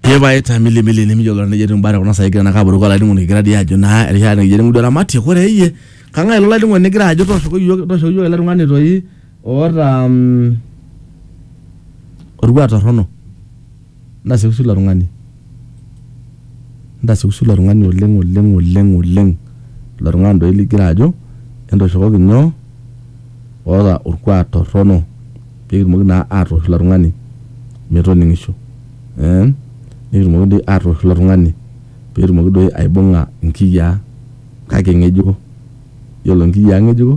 Epae ta mili mili nimijo lolo nejo etiu mbare kuna sai kira nakaburuko olainining'oni kigira dii ajo naa erishata nikijo nikijo ramatie kore iyie kang'ae ilo lainining'oni nigira ajo tooshoki iyiook tooshoki iyiook ele tung'ani toi oota mm, orkuak torrono ntasioki sii ilo tung'ani. Entasiusiu ilo tung'ani oleng oleng oleng oleng ilo tung'ani doi ligira ajo entoshokoki nyoo oota orkuak torrono pekitumoki naa atoosh ilo tung'ani metoning'isho eh nikitumoki doi atoosh ilo tung'ani petumoki doi aibung'a inkiyiaa kake ing'ejuko yiolo inkiyiaa ng'ejuko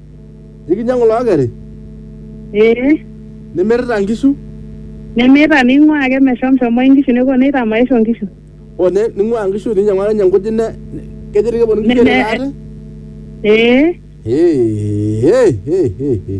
Nikinyiang'u lookeri ee nimirita nkishu nemeeta ning'uaa ake meshomshomoi nkishu nepuo neitaa maisho nkishu o ne- ning'uaa nkishu ninyiang'u ake ninye nkujit ne ne- kejo dii keponu nkishu Ne- airura ate. ee Hey, hey, hey, hey, hey.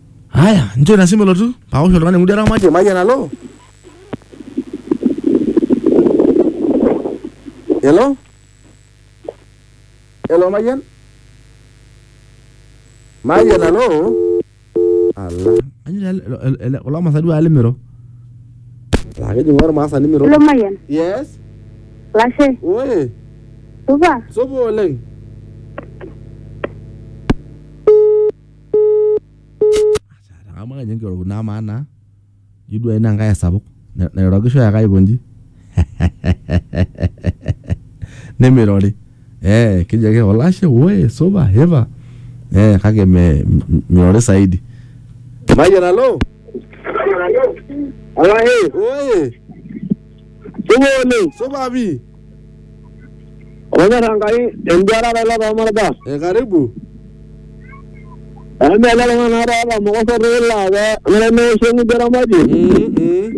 Haya, njo ina simu elotu. Paosh oltung'ani ng'udi aramatie mayian alo. Hello? Hello mayian? Mayian alo? Ala. Anyo ele- ele- ele- kulo masaa duo alimiro. Laa kejing'u ormaasa nimiro. Hello, Mayian. Yes. Lashe, Oi. supa? Supa oleng. Amu kenya enkioro naa amaa naa juu duo ina nkae esapuk na- nairorokisho ake aikonji nemeirori eh keji ake olashe woi supa hipa eh kake me- m- meirori saidi. Mayian alo. Oye. Sumoone, Supa pii. olonyorra Enkai enduarata ilo tolmarba. Eh, karibu. Amu meele tung'anak oota mokoso toila pe nemeisho eng'udi eramati. Mm, mm.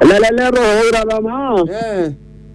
Elelek etooko iratamaa. Eh.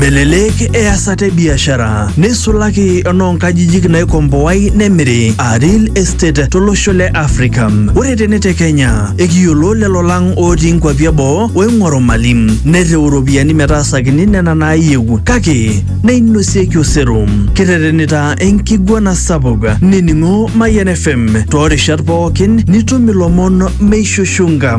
Melelek easata e biashara neisulaki enoonkajijik naikomboai nemiri aa real estate tolosho le Afrika. Ore tene te Kenya ekiyiolo lelo lang otii nkuapi eboo oing'oru mali nereu iropiyiani metaasakini nena naayieu kake neinosieki osero. Kirretenita enkiguana sapuk nining'o Mayian FM toorishat pookin nitum ilomon meishushunga.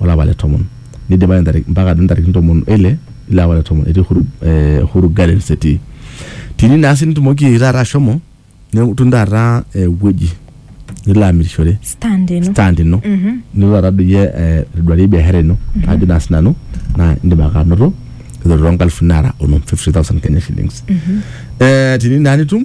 olapa le tomon neidipa mpaka ntarikini tomon oile ilo apa le tomon etii Uhuru, eh, Uhuru Gardens etii tini naa sii nitumoki taata ashomo nitum taata ewueji nilo amirishore stand ino stand ino nilo taata doi iyie eh, aitoduarie biashara ino ajo naa sinanu naa indim ake anoto eiteru toonkalifuni naara onom 50000 Kenya shillings eh, tini naa nitum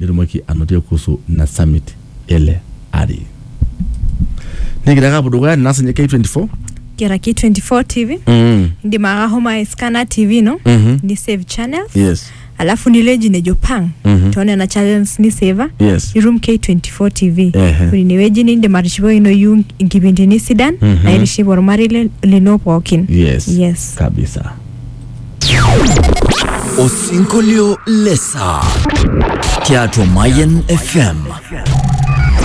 nitumoki anotie kuhusu ina summit ele ari. Nikigira ake apuo dukuya ninaas ninye K24. Kira K24 TV. Mm. Indim ake ahomo aiskana TV ino. Mhm. Ni save channels. Yes. Alafu nilo ewueji nejo pang. Mhm. Too nena channels ni saver. Yes. Nitum K24 TV. Ehe. Ore ine wueji nindim atishipakinoyu inkipindini sidan. Mhm. Naitiship ormarei le- lino pookin. Yes. Yes. Kabisa. Osinkolio le saa tiatua Mayian FM.